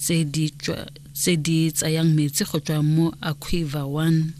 tse di tsayang metsi go tswa mo aquiver one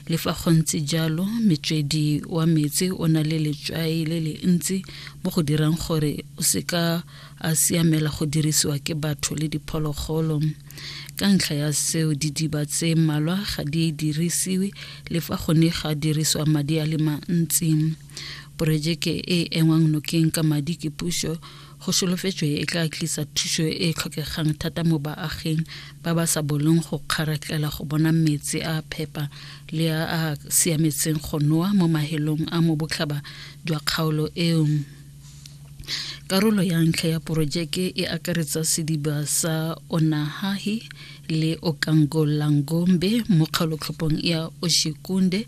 le fa go ntse jalo metswedi wa metsi o na le letswai le le ntsi mo go dirang gore o seka a siamela go dirisiwa ke batho le diphologolo ka ntlha ya seo didiba tse mmalwa ga di dirisiwe le fa go ne ga dirisiwa madi a le mantsi porojeke e engwang nokeng ka madi ke puso Go solofetswe e tla tlisa thuso e e tlhokegang thata mo baaging ba ba sa boleng go kgaratlela go bona metsi a phepa le a a siametseng go noa mo mahelong a mo botlhaba jwa kgaolo eo. Karolo ya ntlha ya porojeke e akaretsa sediba sa Onahahi le Okangolangombe mo kgaolotlhopong ya Oshikunde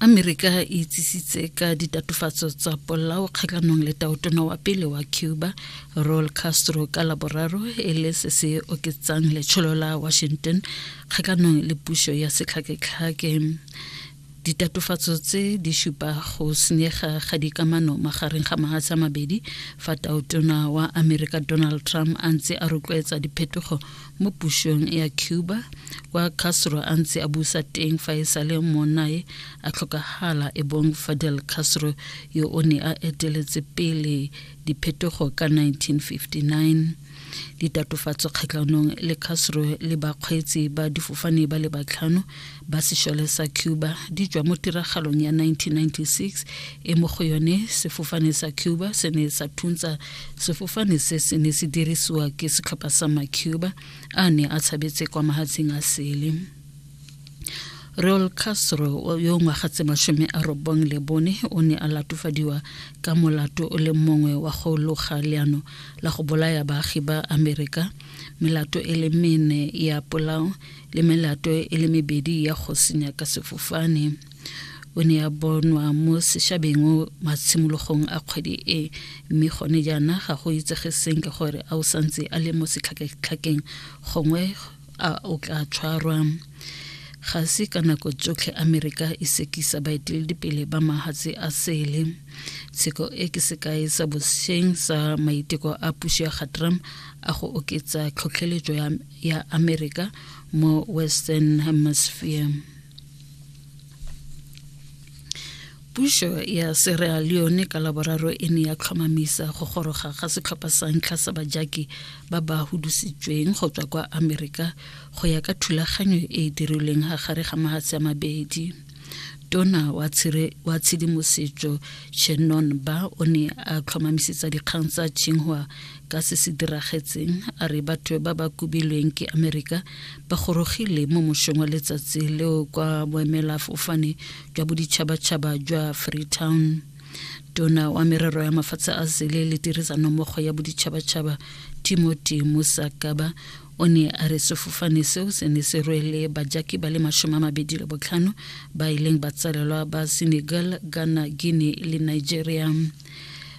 Amerika e itsisitse ka ditatofatso tsa polao kgatlhanong le taotona wa pele wa Cuba Raul Castro ka laboraro e le se se oketsang letsholo la Washington kgatlhanong le puso ya setlhaketlhake ditatofatso tse di supa go senyega ga dikamano magareng ga mahatshe a mabedi fa taotona wa amerika donald trump a ntse a rotloetsa diphetogo mo pusong ya cuba kwa castro a ntse a busa teng fa e sale monae a tlhokagala e bong fadel castro yo o ne a eteletse pele diphetogo ka 1959 ditatofatso kgatlhanong le castro le bakgweetsi ba difofane ba le batlhano ba sešole sa cuba di tšwa mo tiragalong ya 1996 e mo go yone sefofane sa cuba se ne sa thuntsa sefofane se se ne se dirisiwa ke setlhopha sa macuba a ne a tshabetse kwa mahatsheng a sele Raul Castro yo ngwaga tse mashome a robong le bone o ne a latofadiwa ka molato o le mongwe wa go loga leano la go bolaya baagi ba Amerika melato e le mene ya polao le melato e le mebedi ya go senya ka sefofane o ne a bonwa mo sešabeng matshimologong a kgwedi e mme gone jaana ga go itsege senke gore a o santse a le mo setlhaketlhakeng gongwe a o tla tshwarwa ga se ka nako tsotlhe amerika e sekisa baeteledipele ba mahatshe a sele tsheko e ke sekae sa bosheng sa maiteko a puso ya ga trump a go oketsa tlhotlheletso ya ya america mo western hemisphere puso ya sierra leone ka laboraro e ne ya tlhomamisa go goroga ga setlhopha sa ntlha sa bajaki ba ba hudusitsweng go tswa kwa amerika go ya ka thulaganyo e e dirilweng ga gare ga mahatshe a mabedi tona wa tshedimosetso shannon ba o ne a tlhomamisetsa dikgang tsa chinghua ka se se diragetseng a re batho ba ba kubilweng ke amerika ba gorogile mo mošong wa letsatsi leo kwa boemela fofane jwa boditšhabatšhaba jwa freetown tona wa merero ya mafatshe a sele le tirisanommogo ya boditšhabatšhaba timothy musakaba o ne a re sefofane seo se ne se rwele bajaki ba le masome a mabedi le botlhano ba e leng batsalelwa ba senegal ghana guinea le nigeria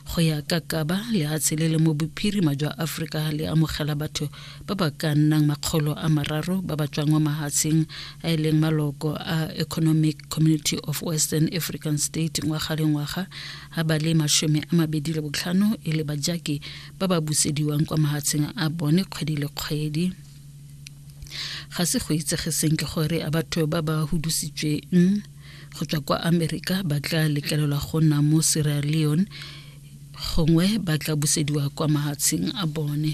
go ya ka kaba lehatshe le le mo bophirima jwa aforika le amogela batho ba ba ka nnang makgolo a mararo ba ba tswang mo mahatsheng a e leng maloko a economic community of western african state ngwaga le ngwaga a ba le masome a mabedi le botlhano e le bajaki ba ba busediwang kwa mahatsheng a bone kgwedi le kgwedi ga se go itsege senke gore a batho ba ba hudusitsweng go tswa kwa amerika ba tla letlelelwa go nna mo sierra leone gongwe ba tla busediwa kwa mahatsheng a bone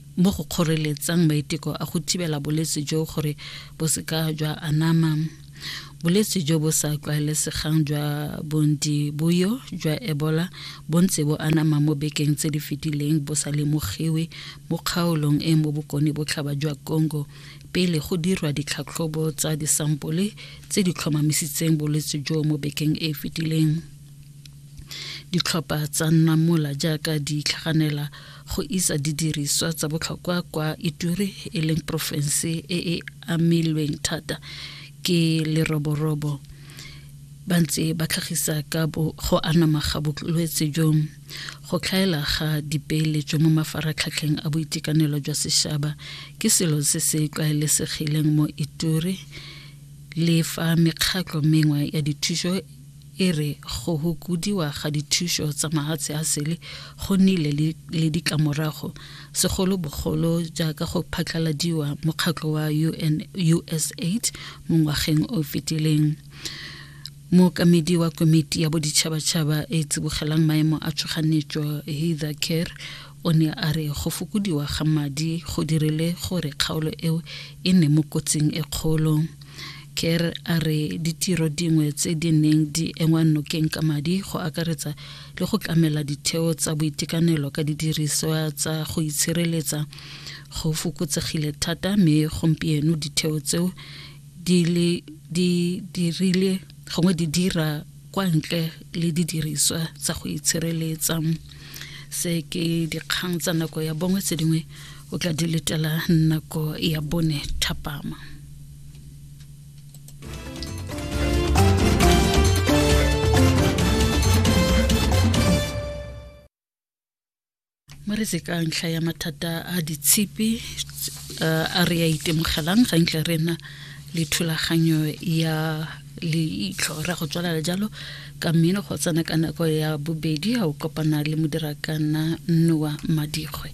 mo go kgoreletsang maiteko a go thibela bolwetse jo gore bo seka jwa anama bolwetse jo bo sa tlwaelesegang jwa bondi boyo jwa ebola bo ntse bo anama mo bekeng tse di fetileng bo sa lemogiwe mo kgaolong e mo bokone botlhaba jwa congo pele go dirwa ditlhatlhobo tsa disampole tse di tlhomamisitseng bolwetse jo mo bekeng e e fetileng ditlhopha tsa nna mola jaaka di tlhaganela go isa didiriswa tsa botlhokwa kwa ituri e leng porofense e e amilweng thata ke leroborobo ba ntse ba tlhagisa ka go anama ga bolwetse jo go tlhaela ga dipeeletso mo mafaratlhatlheng a boitekanelo jwa sešaba ke selo se se tlwaelesegileng mo ituri le fa mekgatlho mengwe ya dithuso e re go hokodiwa ga dithuso tsa mahatshe a sele go nnile le ditlamorago segolobogolo jaaka go phatlaladiwa mokgatlho wa UN, usaid mo ngwageng o fetileng mookamedi wa komiti ya boditšhabatšhaba e tsibogelang maemo a tshoganyetso heather care O ne a re go fokodiwa ga madi go dirile gore kgaolo eo e nne mo kotsing e kgolo. Kerr a re ditiro dingwe tse di neng di engwa nokeng ka madi go akaretsa le go tlamela ditheo tsa boitekanelo ka didiriswa tsa go itshireletsa go fokotsegile thata mme gompieno ditheo tseo di dirile gongwe di dira kwa ntle le didiriswa tsa go itshireletsa se ke dikgang tsa nako ya bongwe tse dingwe o tla di letela nako ya bone thapama mo re ka ntlha ya mathata a ditshipi a re a itemogelang ga ntle re na le thulaganyo ya leitlho ra go tswalela jalo ka mmino go tsena ka nako ya bobedi ga o kopana le modirakana noa madikgwe